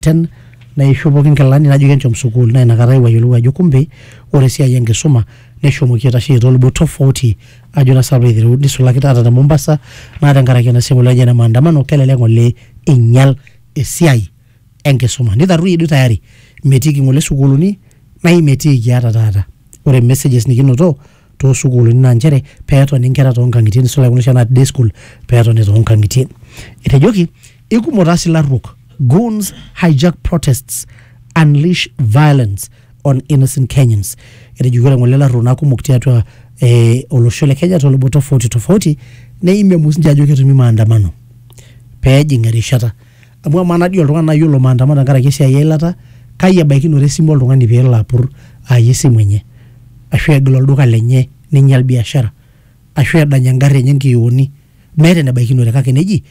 ten naishopoki nkilani najoki enchom sukuul naa inakata aewuo ayiolou ajo kumbe ore esiai enkisuma neshomoki aitasheyie toolubot tofauti ajo naa sinanu aitereu nisulaki taata te Mombasa naa tenkaraki ena siai naji ene maandamano kelelek ng'ole einyial esiai enkisuma nitarruoyie duo tayari metiiki ng'ole sukuuluni naa imetiiki ata taata ore messages nikinoto too sukuulini naa nchere pee etoni nkera too nkang'itie nisulaki kuna oshi anaa day school pee etoni too nkang'itie. Etejoki ikumok taa sii ilarruok, goons hijack protests, unleash violence on innocent Kenyans. Etejoki ore ng'ole ilarruok naa kumok tiatua eh olosho le Kenya too lubot tofauti tofauti neimie sii ninche ajo ketumi maandamano pee ejing erishata. amu amaa najo oltung'ani nai olo maandamano tenkaraki esiai eilata, kai ebaikinore esimu oltung'ani pee elo apur aaya esimu enye, ashu egil olduka lenye ninyal biashara, ashu edany eng'ari enye nkioni, meeta enebaikinore kake neji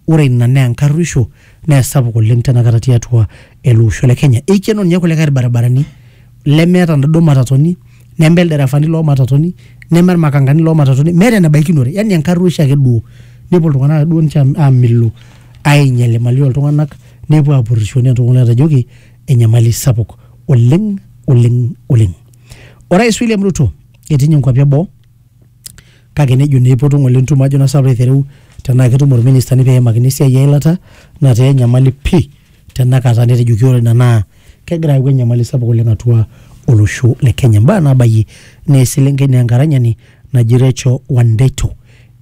ore ina naa enkaruoisho nee sapuk oleng' tena kata tiatua ele osho le Kenya. Eikeno nye kulikai irbaribarani lemeeta inaduo matatoni, neme ilderefani loo matatoni, neme irmakankani loo matatoni, meeta enebaikinore yani enkaruoisho ake duo nepuo iltung'anak ake duo nje aamilu. ainyal imali oltung'anak nepuo apurrisho nentoki natajoki enyamali sapuk oleng oleng oleng orais William Ruto etii ninye nkuapi eboo kake nejo naa eipotu ng'ole entumo ajo naa sapuk aitereu tenaa ketumo irministani pee eimakini esiai eilata nataa enyamali pii tenakata netejoki ore ina naa kegira ayau enyamali sapuk oleng atua olosho le Kenya. Mbaa naabayie naa eselenkei naa enkaranyani naji Recho Wandeto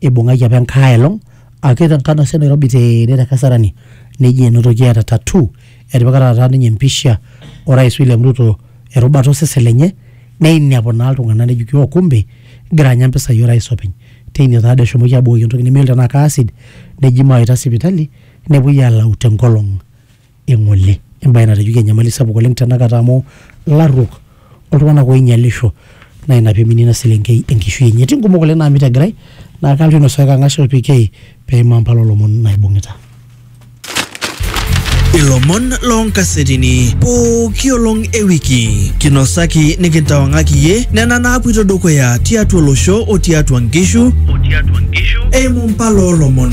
eibung'aki apa enkae elong ake tenkana sii Nairobi tene te Kasarani neji enotoki eeta tattoo etipika taata ninye empisha orais William Ruto erubata osesen lenye neinepu naa iltung'anak nejoki oh kumbe igira anya impisai orais openy. Teine taadoi eshomoki abukoki entoki nemeyiolo tenaa ke acid neji maawaita sipitali nepuoi alau tenkolong eng'ole. Embae natejoki enyamali sapuk oleng tenakata amu larruok oltung'anak oinyalisho naa ina piminie ina selenkei enkishui enye. Etii nkumok oleng naamita egirai naa kalotu ainosaa kang'as o PK peimaa mpala o lomon naibung'ita. Ilomon loo nkasetini pooki olong e wiki. Kinosaki nikintawang'aki iyie nena naapuoito dukuya tiatua olosho o tiatua nkishu eimu mpala o lomon.